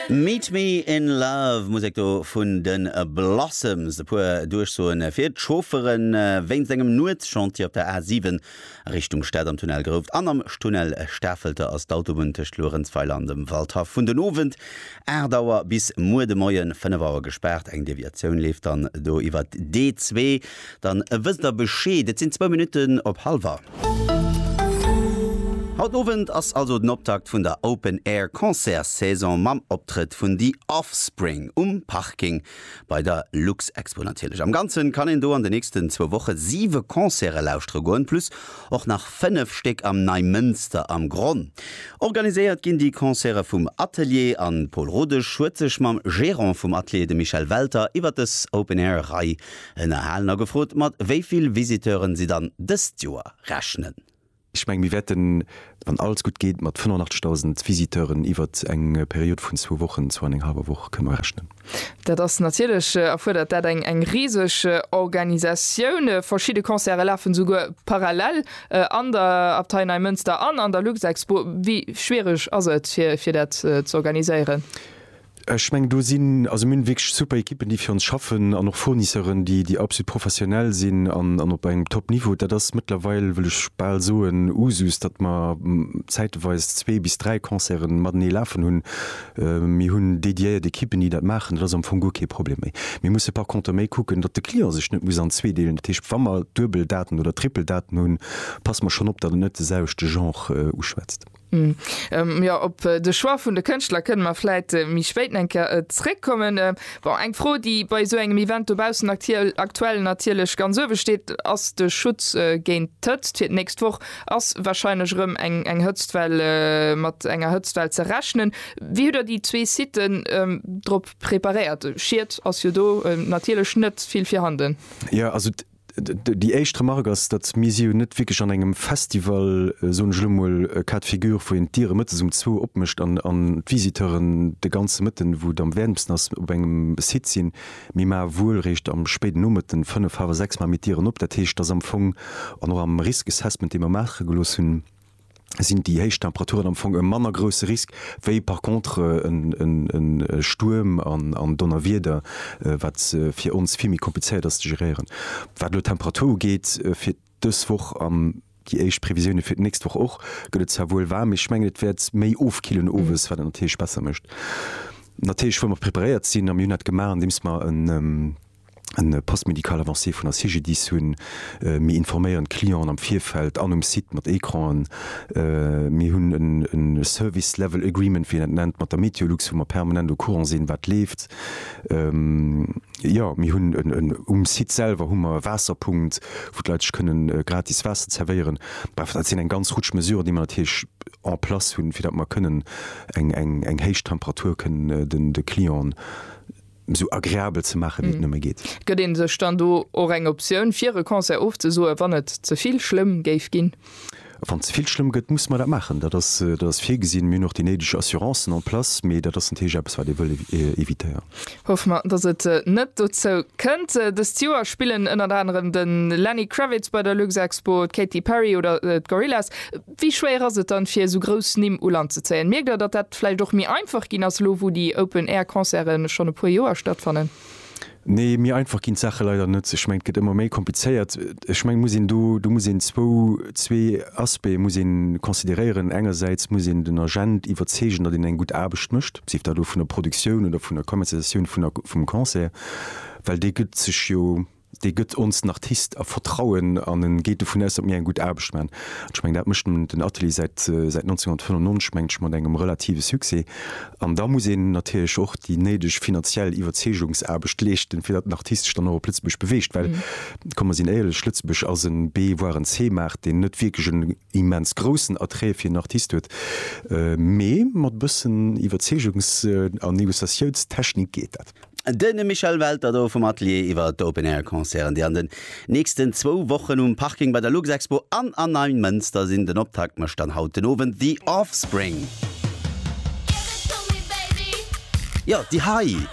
Meet Me In Love, Musek do vun de Blossoms. E puer Duerchsoen fir d'Chauffere wéinst engem Nuetschantier op der A7 a Richtung Stad. Am Tunnel Grouft an am Tunnel Stafelter ass d'Autobunn tëscht Luerenzweiler an dem Waldhaff vun den Owend 8 Auer bis muer de Moien 5 Auer gespaart. Eng Deviatioun leeft dann do iwwert d'A2. Dann wësst der Bescheed, et sinn zwou Minutten op halwer. Haut Owend ass also den Optakt vun der Open Air Concertssaison mam Optrëtt vun The Offspring um Parking bei der Luxexpo natierlech. Am Ganzen kann een do an den nächsten zwou Woche siwe Concerte lauschtere goen, plus och nach fënnef Stéck am Neimënster am Gronn. Organiséiert ginn déi Concerte vum Atelier an Paul Rodesch huet sech mam Gerant vum Atelier, dem Michel Welter, iwwert dës Open Air Rei Ënnerhalen a gefrot, mat wéi vill Visiteuren si dann dëst Joer rechnen. Ech menge mir wäerten, wann alles gutt geet, mat 85.000 Visiteuren iwwert eng Period vun zwou Wochen, zwou an eng hallwer Woch, kënne rechnen. Dat ass natierlech, erfuerdert dat eng eng riseg Organisatioun. Verschidde Concerte lafen esouguer parallel an der Abtei Neimënster an an der Luxexpo. Wéi schwiereg ass et fir fir dat z'organiséieren? Ech mengen do sinn, also mir hunn wierklech super Ekippen déi fir ons schaffen an och Fournisseuren déi déi absolut professionell sinn an an op engem top Niveau. Dat ass mëttlerweil, wëll ech bal soen, Usus, datt mer zäiteweis zwee bis dräi Concerten matenee lafen hunn. Mir hunn dédiéiert Ekippen déi dat maachen, dat ass am Fong guer kee Problem méi. Mir musse par contre méi kucken, datt de Client sech net muss an zwee deelen. Dat heescht, wa mer duebel Daten oder triple Daten hunn, passe mer schonn op, datt et net de selwechte Genre uschwätzt. Hm, jo, op de Choix vun de Kënschtler kënne mer vläit méi spéit eng Kéier zréckkommen. Bon, eng Fro, déi bei esou engem Event dobaussen aktuell natierlech ganz uewe steet, ass de Schutz géint d'Hëtzt. Fir d'nächst Woch ass warscheinlech erëm eng eng Hëtztwell, mat enger Hëtztwell ze rechnen. Wéi hutt Der déi zwee Siten drop preparéiert? Schied ass jo do natierlech net vill virhanden. Jo, also Déi éischt Remark ass, datt mir si jo net wierklech an engem Festival, soen ech elo mol, cas de figure, wou een d'Diere mëttes um zwou opmécht an d'Visiteuren de ganze Mëtten, wou et am wäermsten ass, op engem Site sinn. Mir maache wuel réischt am spéiden Nomëtten, fënnef, hawer sechs, maache mir d'Dieren op. Dat heescht, datt am Fong, an och am Risk Assessment, dee mer maache gelooss hunn, sinn déi héich Temperaturen am Fong e manner grousse Risk wéi par contre e Stuerm an Donnerwieder, wat fir ons vill méi komplizéiert ass ze geréieren. Wat elo d'Temperatur ugeet fir dës Woch an déi éischt Previsioune fir d'nächst Woch och, gëtt et zwar wuel waarm, mee ech mengen et wäert méi ofkillen owes, wat et natierlech besser mécht. Natierlech wëlle mer preparéiert sinn a mir hunn dat gemaach andeems mer en. en Poste médical avancé vun der CGDIS hunn. Mir informéieren d'Clienten am Virfeld an um Site mat Ecranen. Mir hunn e Service Level Agreement, wéi een dat nennt, mat der MeteoLux, wou mer permanent au courant sinn, wat leeft. Jo, mir hunn en, um Site selwer hu mer e Waasserpunkt, wou d'Leit sech kënnen gratis Waasser zerwéieren. Bref, dat sinn eng ganz Rutsch Mesuren, déi mer natierlech en place hunn, fir datt mer kënnen eng héich Temperatur kënnen de Clienten, esou agreabel ze maache wéi et nëmme geet. Gëtt ee sech dann do och eng Optioun fir e Concert ofzesoe wann et ze vill schlëmm géif ginn? Wann ze vill schlëmm gëtt, musse mer dat maachen. Dat ass virgesinn. Mir hunn och déi néideg Assurancen en place, mee dat ass natierlech eppes wat ee wëll evitéieren. Hoffe mer, datt et net dozou kënnt. Dëst Joer spillen ënnert anerem de Lenny Kravitz bei der Luxexpo, d'Katy Perry oder d'Gorillaz. Wéi schwéier ass et dann, fir esou grouss Nimm u Land ze zéien? Mierkt der, datt dat vläicht och méi einfach ginn ass, elo wou déi Open Air Concerten schonn e puer Joer stattfannen? Nee, méi einfach ginn d'Saache leider net. Ech mengen, et gëtt ëmmer méi komplizéiert. Ech mengen, et muss een do, do muss een zwou, zwee Aspecte muss ee consideréieren. Engersäits muss een den Agent iwwerzeegen, datt een eng gutt Aarbecht mécht, sief dat elo vun der Produktioun oder vun der Commercialisatioun vun der, vum Concert, well dee gëtt sech jo, dee gëtt ons den Artist a Vertrauen an en geet dovun aus, datt mir eng gutt Aarbecht maan. An ech mengen, dat mécht den Atelier säit 1995, mengt ech, mat engem relative Succès. An da muss een natierlech och déi néideg finanziell Iwwerzeegungsaarbecht leeschten, fir datt den Artist sech dann och op Lëtzebuerg beweegt. Well, komm, mer sinn éierlech, Lëtzebuerg ass en B-, voire en C-Maart, deen net wierklech en immens groussen Attrait fir en Artist huet. Mee mat e bëssen Iwwerzeegungs a Negociatiounstechnik geet dat. De Michel Welter do vum Atelier iwwer d'Open Air Concerten, déi an den nächsten zwou Wochen um Parking bei der Luxexpo an an Neimënster sinn. Den Optakt mécht dann haut den Owend The Offspring. Jo, déi hei!